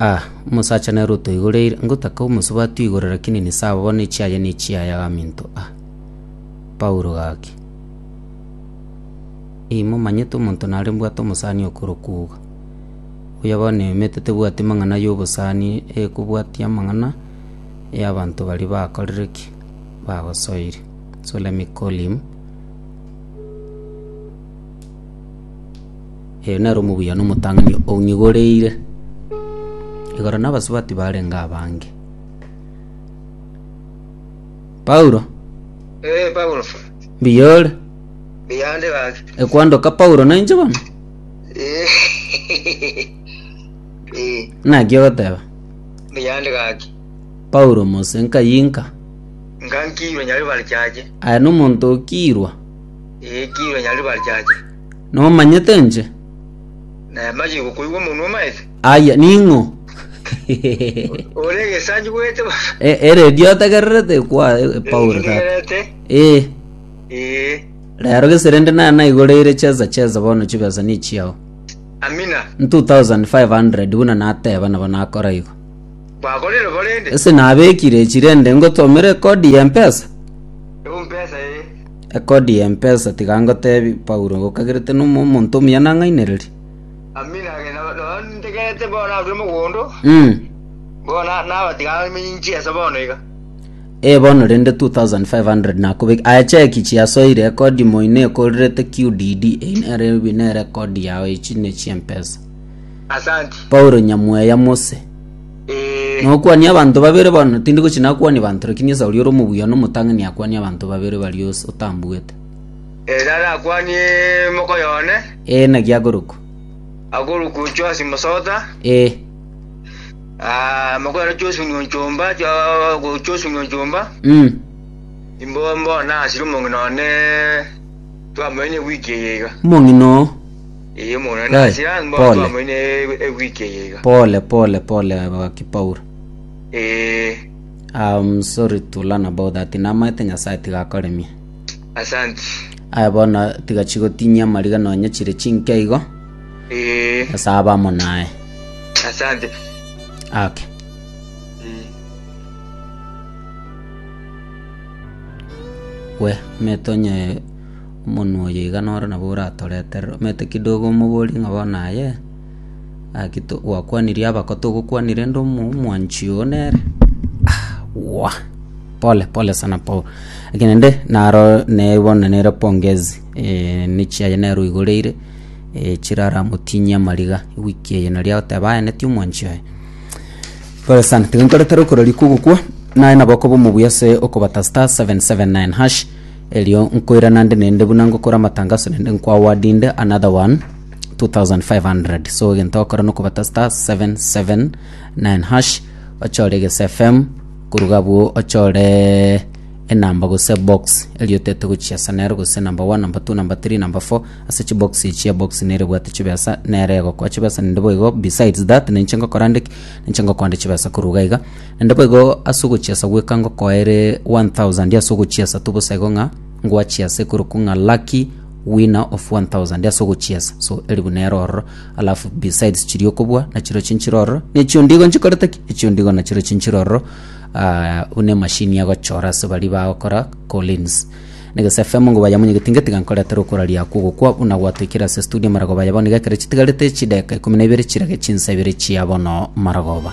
Ah, omosacha nere otoigoreire, ngotaka omosubati atoigore lakini nisawa bono echiaye ne echiaya gaminto ah. Paulo gaki. Ii momanyete omonto nare mbwate omosani okorokwa uga. Oyo bono eyomete tebwati mang'ana ya obosani ekobwati amang'ana ya abanto baria bakorire ki? Bagosoire. So let me call him. Ee, nere omobuya na omotang'ani ong'igoreire igoro nabasubati barenge abange. Paulo, Ee, Paulo. mbuya ore? Biyande gaki. Ekwandoka Paulo nainche bono? Ee. Ee, Naki ogoteba? biyande gaki. Paulo mose nkayinka. Nkankirwe nyari bari chache. Aye nomonto okirwa. Eekirwe nyariri barichache. Nomanyete inche? Namache gokoigwa omonwa omaete. Aya, ning'o? Ore egesanyi bwete baba. E- eredio otegererete kwa e- Paulo tata. Ndegerete. Eh, Ee. rero geserende naye naigoreire cheza cheza bono chibesa ni chiao. Amina. N 2500 buna nateba nabo nakora igo. Bakorire borende. Ese nabekire chirende ngotomere kodi ya mpesa. Ebu mpesa ee. Ekodi y'empesa tiga ngotebi, Paulo, okagerete ning'o omonto omuya nang'ainererie? Amina ake, nabo nabo ntegerete bono narure mogondo, Mm. bono na- naba tiga amenye inchi ense bono iga. Ee bono rende 2500 nakobek aya cheki chiasoire ekodi moino ekorerete QDD eyi nere ebi nere ekodi yao echi ne chiempesa Asanti. Paulo nyamweya mose Nokwanie abanto babere bono, tindi gochia nakwanie banto, lakini Esau oria ore omobuya na omotang'ani akwanie abanto babere baria ose otambuete. Ere arakwanie mokoyo one, Ee, naki akorokwa. akorokwa Joasi Mosota, Ee, ah, mokoyo one Josi Nyonchomba, Jo- Josi Nyonchomba, mm, imbo mbona asiri omong'ina one twamanyire wiki eye iga. omong'ina oo. Pole, pole, pole, abagaki Paul. I'm sorry to learn about that. Namaete Nyasaye tiga akoremie. Aya bono tiga chigotinyia amariga nonye chire chinke igo. Nyasaye abe amo naye. Okay. We, metonye Omonwa oyo iga noro nabo oratoreterere. Omanyete kidogo omoborie ng'a bono aye, gaki to gwakwanirie aba ko togokwania rende omo omwanchi oo nere aahh pole pole sana po laki naende naro nere bono nere pongezi ne chiaye nero oigoreire chiraramotinyie amariga ewiki eye nari agoteba aye neti omwanchi oye. Pole sana tiga nkoretere okoreri kogokwa, naye nabo okoba omobuya ase okobata star seven seven nine hash. Erio nkoirana nde nende buna ngokora amatanga ase nende nkwa award inde another one 2500 so egento okora nokobata star 779 hash ochore egese fm koruga abwo ochore enamba gose box erio otete gochia ase nero gose number one number two number three number four ase chibox echi ebox nere ebwate chibesa nere egokoa chibesa nende boigo besides that ninche ngokora nde ki ninche ngokoa nde chibesa korwa iga iga. Naende boigo ase ogochiasa gweka ngokoere one thousand ase ogochiasa tobosa igo ng'a ngwachiase ekorokwa ng'a lucky winner of one thousand ase ogochiasa so elifu nero ororo alafu besides chiria okobua nachiro chinchire ororo nechio ndigo nchikorete ki echio ndigo nachiro chinchire ororo ah, buna emashini yagochora ase bari bagokora collins negese fm ngo bayamonyegeti ngetiga nkoretera okoraria akwo gokwa buna gwatoikire ase studio maragoba yabo niga ekero chitigarete chideka ikomi na ibere chirage chinsa ibere chia bono maragoba